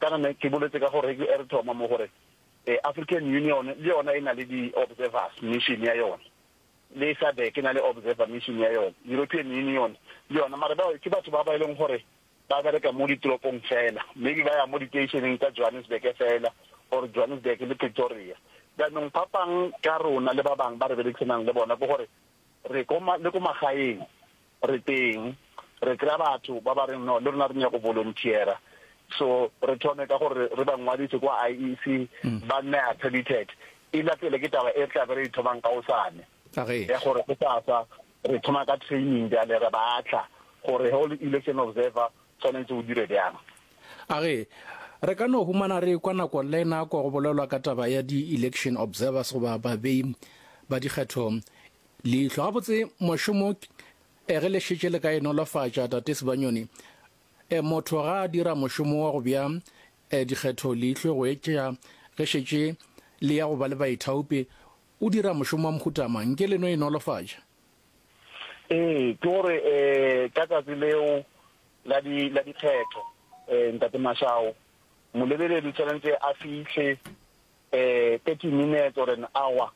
Kana ne ke boletse ka gore ge re thoma mo gore African Union le yona e na le di-observers mission ya yona, le SADC e na le observer mission ya yona, European Union le yona, mare bao ke batho ba ba e leng gore ba bereka mo ditoropong fela, maybe ba ya mo diteisheneng tsa Johannesburg fela or Johannesburg le Pretoria. Jaanong phapang ka rona le ba bangwe ba re berekisanang le bona ke gore Re ko ma, le ko magaeng re teng, re kry-a batho ba ba reng no le rona re nyaka go volunteera. So re thome ka gore re ba ngwadise kwa IEC, ba nne accredited. E latele ke taba e re tlabe re e thomang kaosane, A ge. ya gore go sasa re thoma ka training bjale re ba tla gore ge o le election observer tshwanetse o dire bjang. A re, Re ka no humana re ekwa nako le nako go bolelwa ka taba ya di-election observers goba babei ba dikgetho leihlo. Gabotse mošomo e ge le šetše le ka e nolofatša, Tate Sebanyoni, e motho ga a dira mošomo wa go bja e dikgetho leihlo go etšea ge šetše le ya go ba le baithaopi o dira mošomo wa mohutamang ke le no e nolofatša? Ee, ke gore um ka tsatsi leo la di la dikgetho um ntate Mashao molebeledi tshwanetse a fitlhe um thirty minutes or an hour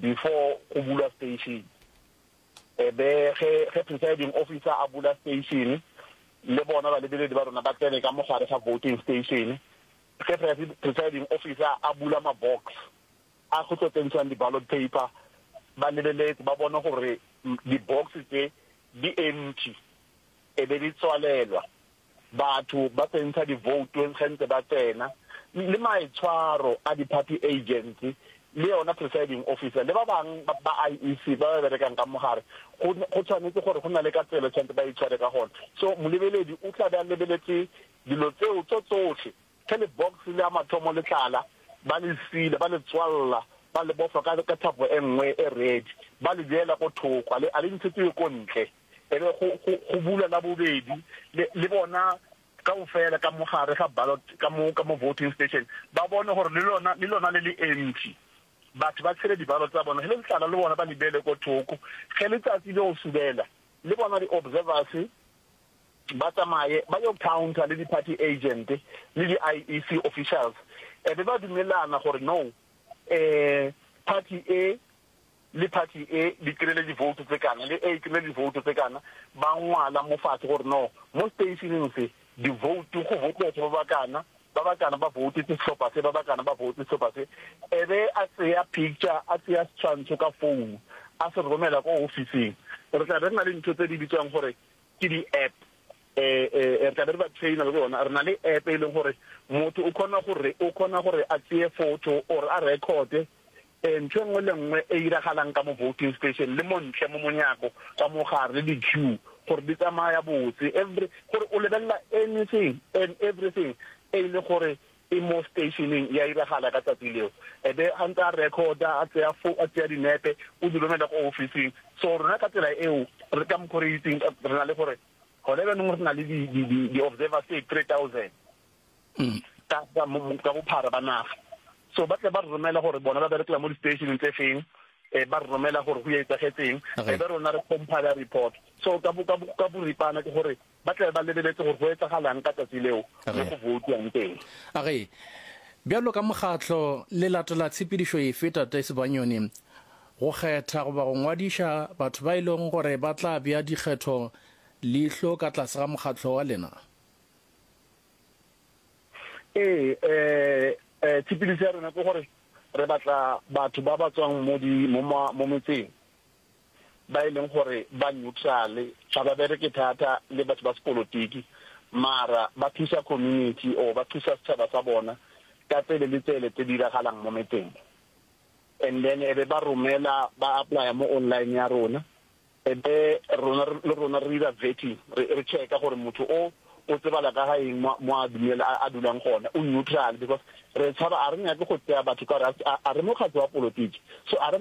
before go bulwa station e be ge ge presiding officer a bula station le bona balebeledi ba rona ba tsene ka mogare ga voting station ge presiding officer a bula mabox a go tlo tsentšwang di-ballot paper, ba lebeletse ba bone gore di-box tše di empty, e be di tswalelwa batho ba tsentsha di-vote ge ntse ba tsena, le maitshwaro a di-party agents le yona presiding officer le ba bang ba IEC ba ba berekang ka mo gare, go go tshwanetse gore go na le ka tsela e tshwanetse ba itshware ka gona. So molebeledi o tla be a lebeletse dilo tseo tso tsohle. Ge lebokse la mathomo le tlala, ba le sila, ba le tswalla, ba le bofa ka, ka thapo e nngwe e redi, ba le beela ko thoko, a le, a le ntshetsiwe ko ntle. E be go, go, go bulwa la bobedi, le, le bona kaofela ka mo gare ga ballot, ka mo, ka mo voting station, ba bone gore le lona, le lona le le empty. Batho ba tshele di-ballot tsa bona, ge le le tlala le bona ba le beele ko thoko. Ge letsatsi le go subela, le bona di-observers, ba tsamaye ba yo counter le di-party agent le di-IEC officials e be ba dumelana gore no um party e le party e di kry-ile divoutu tse kana le e kry-ile divoutu tse kana, ba ngwala mo fatshe gore no mo stationeng se divoutu go vote batho ba ba kana, ba ba kana ba voutetse sehlopha se, ba ba kana ba voutetse sehlopha se, e be a tseya picture a tseya setshwantsho ka founu a se romela ko ofising. Re tla be re na le ntho tse di bitswang gore ke di App e re tla be re ba trainer le bona re na le App e leng gore motho o khona gore o khona gore a tseye photo or a record e ntho engwe le nngwe e iragalang ka mo voting station le montle mo monyako ka mogare le di queue gore di tsamaya botse every gore o lebella anything and everything e le gore e mo stationeng, ya iragala ka tsatsi leo. E be a ntse a recorda, a tseya fo, a tseya dinepe, o di romela ko ofising. So rona ka tsela eo, re ka mokgo re itseng, re na le gore gone bjanong re na le di, di, di, di observers tse three thousand ka, ka, ka bophara ba naga. So ba tle ba re romela gore bona ba berekela mo di-stationeng tse feng, e ba re romela gore go etsagetseng, e be rona re compiler report. So ka, ka, ka boripana ke gore ba tla be ba lebeletse gore go etsagalang ka tsatsi leo mo go boutwang teng. A re, Bjalo ka mokgatlo, le latela tshepedišo efe, Tate Sebanyoni? Go kgetha goba go ngwadiša batho ba e lego gore ba tla bea dikgetho leihlo ka tlase ga mokgatlo wa lena? Ee, ee, tshepedišo ya rena ke gore re batla batho ba ba tswang mo metseng. ba e leng gore ba neutrale, ga ba bereke thata le batho ba sepolotiki, mara ba thusa community or ba thusa setšhaba sa bona ka tsele le tsele tse diragalang mo metseng mo. And then e be ba romela, ba apply-a mo online ya rona, e be rona le rona re dira vetting, re re check-a gore motho o o tsebala ka ga eng mo mo a dumela a dulang gona, o neutral, because re tshaba, a re nyake go tseya batho ka gore a re mokgatlo wa polotiki, so a re